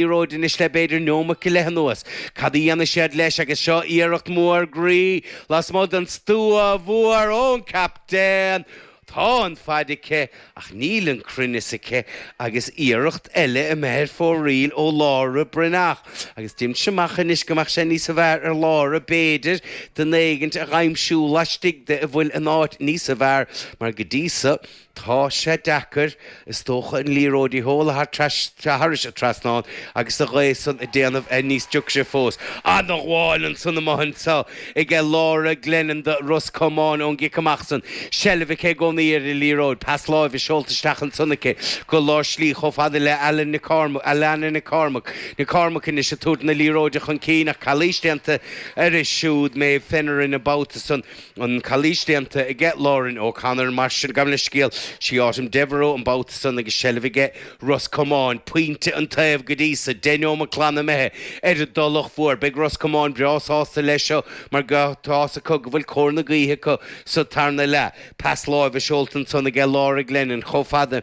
liathróid anois le b'fhéidir neomat go leith anuas. Cad a dhéanfaidh siad leis agus seo iarracht mhór groí lasmuigh den stua mhór ón captaen. Tá an faid aici ach níl an cruinneas aici agus iarracht eile imithe ar fóraoil ó Lára Bhreathnach agus deinimse amach anois go mbeadh sé níos a bhfearr ar Lára b'fhéidir duine éigint a dh'aimsiú laistigh de a bhfuil in áit níos a bhfearr mar go dtí so Tá sé deacair, is dócha, an liathróid a sheoladh thar trais thairis an trasnán agus an ghaoth san á dhéanamh níos deacra fós. Ana-ghabháil ansan amuigh anso aige Laura Glennon do Ros Comáin ón gcic amach san, seilbh aici i gcónaí ar an liathróid, pas láimhe seolta isteach ansan aici go lár slí chomh fada le Alannah Nic Cormaic, Alannah Nic Cormaic, Nic Cormaic anois ag tabhairt na liathróide chun cinn ach calaois déanta uirthi siúd, Méabh Finneran an babhta san. an chalaois déanta aige Lauren O'Connor, mar sin, gabh mo leithscéal, sí Autumn Devereux an babhta san agus seilbh aige Ros Comáin, pointe an taobh go dtí so, deich neomat glan imithe ar an dTulach Mhór. Beidh Ros Comáin breá sásta leis seo mar tá a fhios acu go bhfuil cóir na gaoithe acu sa tarna leath. Pas láimhe seolta ansan aige Laura Glennon chomh fada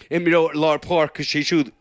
Imreoir lár páirce, is é siúd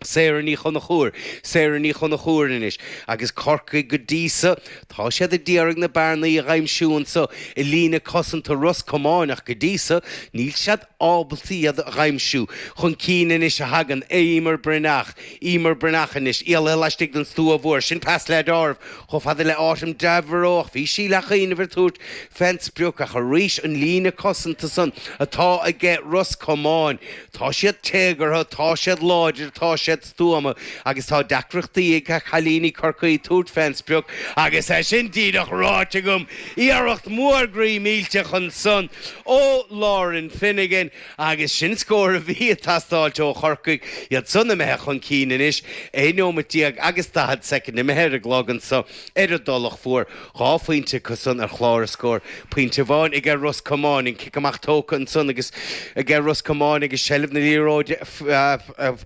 Sarah Ní Chonchúir, Sarah Ní Chonchúir anois, agus Corcaigh go dtí so, tá siad a d'iarraidh na bearnaí a dh'aimsiú anseo i líne cosanta Ros Comáin ach go dtí so, níl siad ábalta iad a dh'aimsiú. Chun cinn anois a thagann Eimear Breathnach, Eimear Breathnach anois, éalaithe laistigh den stua mhór, sin pas led' áireamh Chomh fada le Autumn Devereux, bhí sí ag leathchuimhneamh ar tabhairt fén sprioc ach arís an líne cosanta san atá aige Ros Comáin. Tá siad téagartha, tá siad láidir, tá siad stuama agus tá deacrachtaí ag cailíní Chorcaí tabhairt fén sprioc agus é sin díreach ráite agam! Iarracht mhór groí millteach ansan ó Lauren Finnegan. Agus sin scór a bhí ag teastáilt ó Chorcaigh, iadsan imithe chun cinn anois, 11 nóimeat agus 40 soicind imithe ar an gclog anso ar an dTulach Mhór, dhá phointe acusan ar chlár na scór, pointe amháin aige Ros Comáin, an cic amach tógtha ansan aige Ros Comáin agus seilbh na liathróide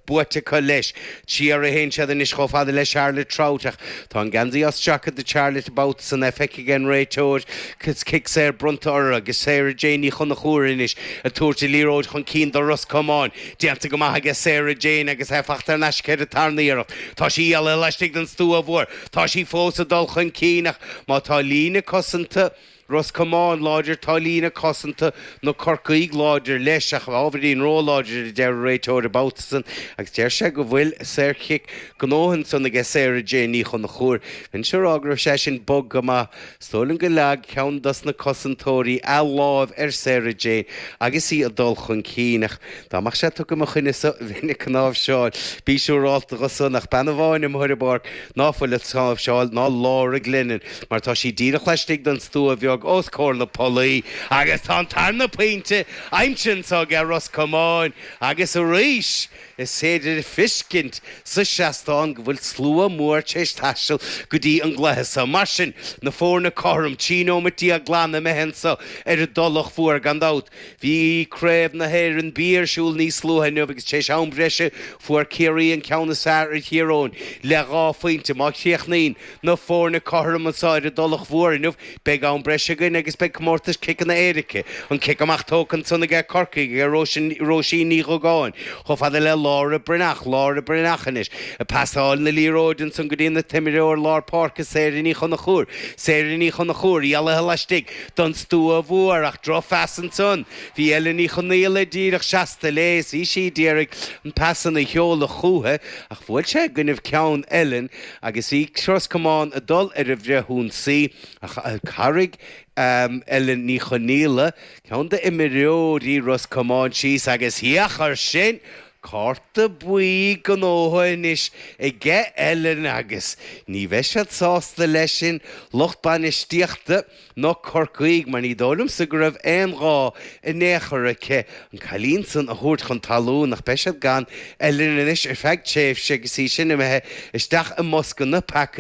buaite acu leis. Siar a théann siad anois chomh fada le Charlotte Trautt ach tá an geansaí á stracadh de Charlotte an babhta san. É feicthe ag an réiteoir cic saor bronnta orthu agus Sarah Jane Ní Chonchúir anois ag tabhairt an liathróid chun cinn do Ros Comáin. Déanta go maith aige Sarah Jane agus é faighte thar n-ais aici ar an tarna iarracht. Tá sí éalaithe laistigh den stua mhór. Tá sí fós ag dul chun cinn ach má tá líne cosanta Ros Comáin láidir, tá líne cosanta na Corcaígh láidir leis, ach ábhairín róláidir, a deir an réiteoir an babhta san agus deir sé go bhfuil saorchic gnótha ansan aige, Sarah Jane Ní Chonchúir. Bheinnse ag rá go raibh sé sin bog go maith. Is dóigh liom go leag ceann dos na cosantóirí a láimh ar Sarah Jane agus í ag dul chun cinn, ach dá mbeadh sé tugtha i mo choinne-sa, bheinn ag cnáimhseáil. Bí siúrálta dho san, ach bean amháin amuigh ar an bpáirc ná fuil ag cnáimhseáil ná Laura Glennon. mar tá sí díreach laistigh den stua bheag os comhair na polaí, agus tá an tarna pointe aimsithe anso aige Ros Comáin, agus arís is féidir a thuiscint sa seastán go bhfuil slua mór tar éis taisteal go dtí an gcluiche so. Mar sin, na foirne cothrom, trí nóimeat déag glan imithe anso ar an dTulach Mhór, gan dabht. Bhí craobh na hÉireann B ar siúl níos luaithe inniu, agus tar éis am breise fuair Ciarraí an ceann is fearr ar Thír Eoghain le dhá phointe. Má chríochnaíonn. Na foirne cothrom anso ar an dTulach Mhór inniu. Beidh am breise againn agus beidh comórtas ciceanna éirice, an cic amach tógtha ansan aige Corcaigh ag Róisín Ní Dhugáin, chomh fada le Laura Breathnach, Laura Breathnach anois, ag pasáil na liathróide ansan go dtí an t-imreoir lár páirce Sarah Ní Chonchúir, Sarah Ní Chonchúir, éalaithe laistigh don stua mhór ach drochphas ansan, bhí Ellen Ní Chonaola díreach seasta léi is bhí sí ag iarraidh an pas san a sheoladh chúiche ach bhuail sé i gcoinnibh ceann Ellen, agus bhí Ros Comáin ag dul ar an bhfrithionsaí ach tharraig Ellen Ní Chonaola, ceann d'imreoirí Ros Comáin síos agus féach air sin, cárta buí gnótha anois aige Ellen agus ní bheidh siad sásta leis sin lucht bainistíochta na Corcaígh, mar ní dóigh liomsa go raibh aon ghá in aon chor aici an cailín san a thabhairt chun talún, ach beidh siad gan Ellen anois ar feadh tréimhse agus í sin imithe isteach i mbosca na bpeacaí.